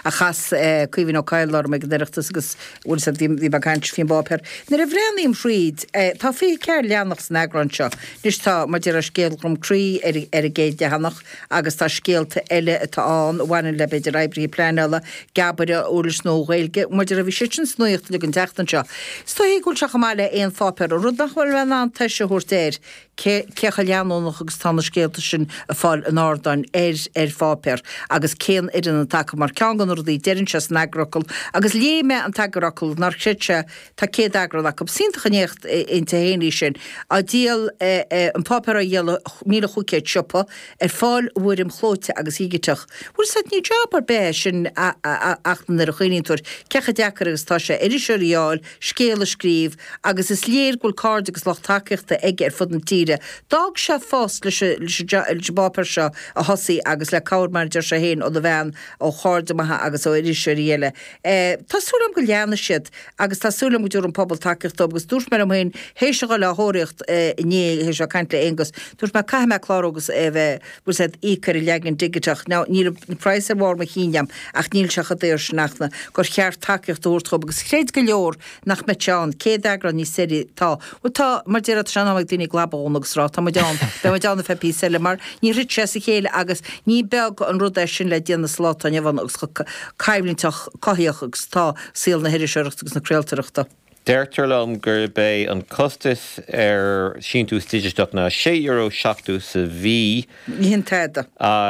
a chas Caoimhín Ó Cadhla orm ag an Oireachtas agus bhuel seod bhí muid ag caint faoin bpáipéar. Nuair a bhreathnaím thríd, tá fiche ceathair leathanach san eagrán seo. Anois tá maidir le scéal Dhroim Crí ar ar an gcéad leathanach agus tá scéalta eile atá ann a bhaineann le b'fhéidir oibrithe pleanála, geabaire, uirlis nua Ghaeilge, mar a deir tú bhí sé sin sa nuaíocht uilig an tseachtain seo. Is dóigh go bhfuil sé chomh maith le aon pháipéar, an rud nach bhfuil mé in ann tomhais a thabhairt air, cé chomh leanúnach agus atá na scéalta sin ag fáil an ardáin ar ar pháipéar agus cén fhoireann atá acu mar ceann de na rudaí a deireann sé san eagarfhocal agus léigh mé an t-eagarfhocal ná, creidtear, tá 100 eagrán acu. Is iontach an éacht inti féin í sin. Á díol an páipéar á dhíol i míle chúig chéad siopa, ar fáil i bhfoirm chlóite agus dhigiteach. Bhuel seod ní drochjab ar bith é sin ach nuair a chuimhníonn tú ar cé chomh deacair agus atá sé iriseoirí a fháil, scéalta a scríobh agus is léir go bhfuil cairde agus lucht tacaíochta aige ar fud na tíre. D'fhág sé a phost leis an bpáipéar seo a thosaí agus le cabhair, mar a deir sé féin, óna bhean, ó chairde maithe agus ó iriseoirí eile. Tá súil agam go leanfaidh siad agus tá súil agam go dtabharfaidh an pobal tacaíocht dóibh agus dúirt mé liom féin th'éis a dhul á thóraíocht inné, th'éis a bheith ag caint le Aonghus, dúirt mé caithfidh mé clárú agus a bheith bhfuil a fhios agat, ag íoc ar an leagan digiteach. Now, níl an praghas ar bharr mo chinn agam, ach níl sé chomh daor sin ach na, gur cheart tacaíocht a thabhairt dóibh agus chreid go leor nach mbeadh sé ann. Céad eagrán níos deirí, tá, bhuel tá, mar a déarfá, sé an t-am ag daoine a gclab a dhún agus a rá, tá muid ann, beidh muid ann go ceann píosa eile, mar níor thit sé as a chéile agus ní beag an rud é sin le déanamh sa lá atá inniu ann agus chomh coimhlinteach, cothaíoch agus atá saol na hiriseoireachta agus na craoltóireachta. Deirtear liom gurb é an costas ar shíntiús digiteach ná €6.70 sa mhí, Ní shin tada.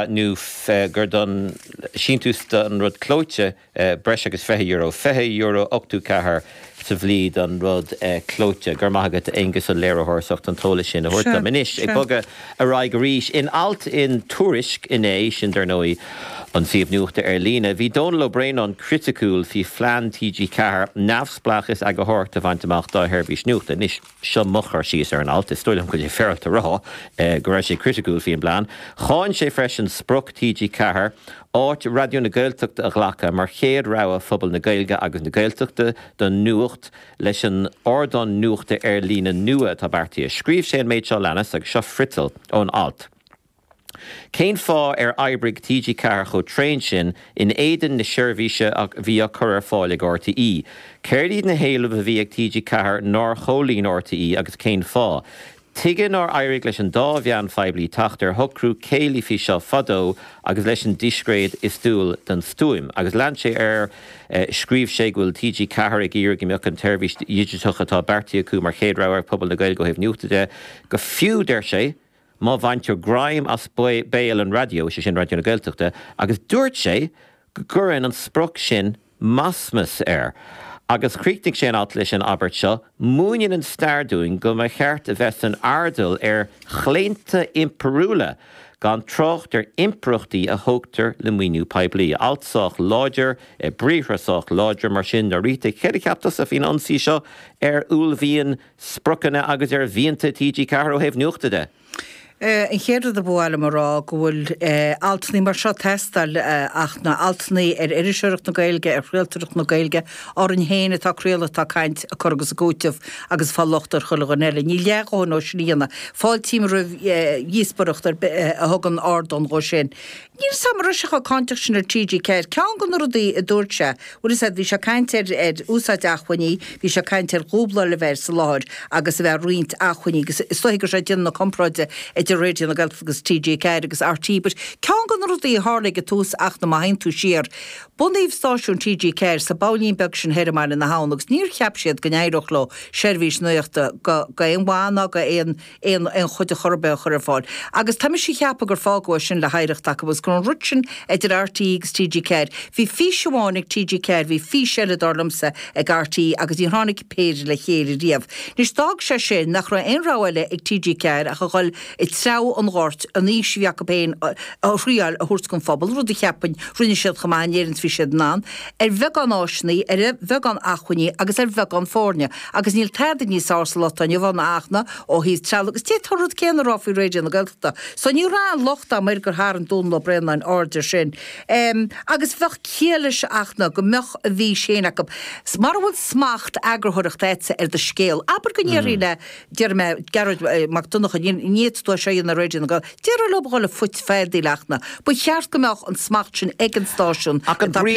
nó gur don síntiús don rud clóite breis agus €20, €20.84 sa mhí don rud clóite. Go raibh maith agat, a Aonghuis, an léiritheoir, as ucht an t-eolas sin a thabhairt dom. Anois, ag bogadh. Ar aghaidh arís. In alt in Tuairisc inné, sin dar ndóigh an suíomh nuachta ar líne, bhí Donall Ó Braonáin criticiúil faoi phlean TG4 neamhspleáchas eagarthóireachta a bhaint amach dá sheirbhís nuachta. Anois, seo mo chur síos ar an alt, is dóigh liom go bhfuil sé féaráilte a rá go raibh sé criticiúil faoin bplean. Cháin sé freisin sprioc TG4 áit Raidió na Gaeltachta a ghlacadh mar chéad rogha phobal na Gaeilge agus na Gaeltachta don nuacht, leis an ardán nuachta ar líne nua atá beartaithe. Scríobh sé an méid seo a leanas, agus seo friotal ón alt, Cén fáth ar oibrigh TG4 chomh tréan sin in éadan na seirbhíse a bhí á cur ar fáil ag RTÉ? Céard iad na héilimh a bhí ag TG4 nár chomhlíon RTÉ agus cén fáth? Tuige nár éirigh leis an dá mheán phoiblí teacht ar shocrú céillí faoi seo fadó agus leis an díscréad is dual don stuaim? Agus lean sé air, Scríobh sé go bhfuil TG4 ag iarraidh go mbeadh an tseirbhís dhigiteach atá beartaithe acu mar chéad rogha ag pobal na Gaeilge ó thaobh nuachta de, go fiú, deir sé, má bhaintear greim as béal an raidió, is é sin Raidió na Gaeltachta, agus dúirt sé go gcuireann an sprioc sin masmas air. Agus chríochnaigh sé an alt leis an abairt seo, Múineann an stair dúinn go mba cheart a bheith san airdeall ar chlaonta impiriúla, gan trácht ar impireachtaí a thógtar le maoiniú poiblí. Alt sách láidir, i mbriathra sách láidir, mar sin. Norita, céard a cheap tusa faoin ionsaí seo ar uaillmhian, spriocanna agus ar mhianta TG4 ó thaobh nuachta de? An chéad rud a ba mhaith liom a rá go bhfuil altannaí mar seo ag teastáil ach na altannaí ar iriseoireacht na Gaeilge, ar chraoltoireacht na Gaeilge, orainn féin atá ag craoladh, atá ag caint, ag cur agus ag cúiteamh agus ag fáil locht ar chuile dhuine eile. Níl leath a dhóthain dhó sin á dhéanamh. Fáiltím roimh dhíospoireacht ar bith a thugann ardán dhó sin. Níl a fhios agam an raibh sé chomh cáinteach sin ar TG4, ceann de na rudaí a dúirt sé, bhfuil a fhios agat, bhí sé ag caint ar ar úsáid acmhainní, bhí sé ag caint ar dhúbláil a bheith ar an láthair agus a bheith ag roinnt acmhainní agus is dóiche go raibh sé ag déanamh na comparáide idir Raidió na Gaeltachta agus TG4 agus RTÉ but ceann de na rudaí a tharla ag an tús ach na má théann tú siar bunaíodh stáisiún TG4 sa mbailín beag sin thiar i mBaile na hAbhann agus níor cheap siad go n-éireodh leo seirbhís nuachta go go aon mhaith ná go aon aon aon chuid ar chor ar bith a chur ar fáil. Agus tá mise a cheapadh gur fágadh é sin le hoidhreacht acu agus go raibh an rud sin idir RTÉ agus TG4, bhí fís amháin ag TG4, bhí fís eile dar liomsa ag RTÉ agus níor tháinig an péire le chéile riamh. Anois, d'fhág sé sin nach raibh aon rogha eile ag TG4 ach a dhul ag treabhadh an ghoirt, an fhís a bhí acu féin a thriáil a thabhairt don phobal, rud a cheapfainn, rinne siad chomh maith in Éirinn is a bhí siad in ann, ar bheagán áiseannaí, ar bheagán acmhainní agus ar bheagán foirne. Agus níl tada níos fearr sa lá atá inniu ann ach na ó thaobh trealaimh agus féadfaidh tú an rud céanna a rá faoi Raidió na Gaeltachta. So ní raibh aon locht agam air gur tharraing Dónall Ó Braonáin aird air sin. Em, agus bheadh ciall leis ach na go mbeadh a bhfís féin acu. S, Mara bhfuil smacht eagarthóireachta agatsa ar do scéal, abair go ndéarfaí le, déarfaidh mé, Gearóid Mac Donncha, ní, ní fhéadfaidh tú é seo a dhéanamh ar Raidió na Gael, déarfaí leob a dhul ag feadaíl ach na, ba cheart go mbeadh an smacht sin ag an stáisiún, Ach an brí,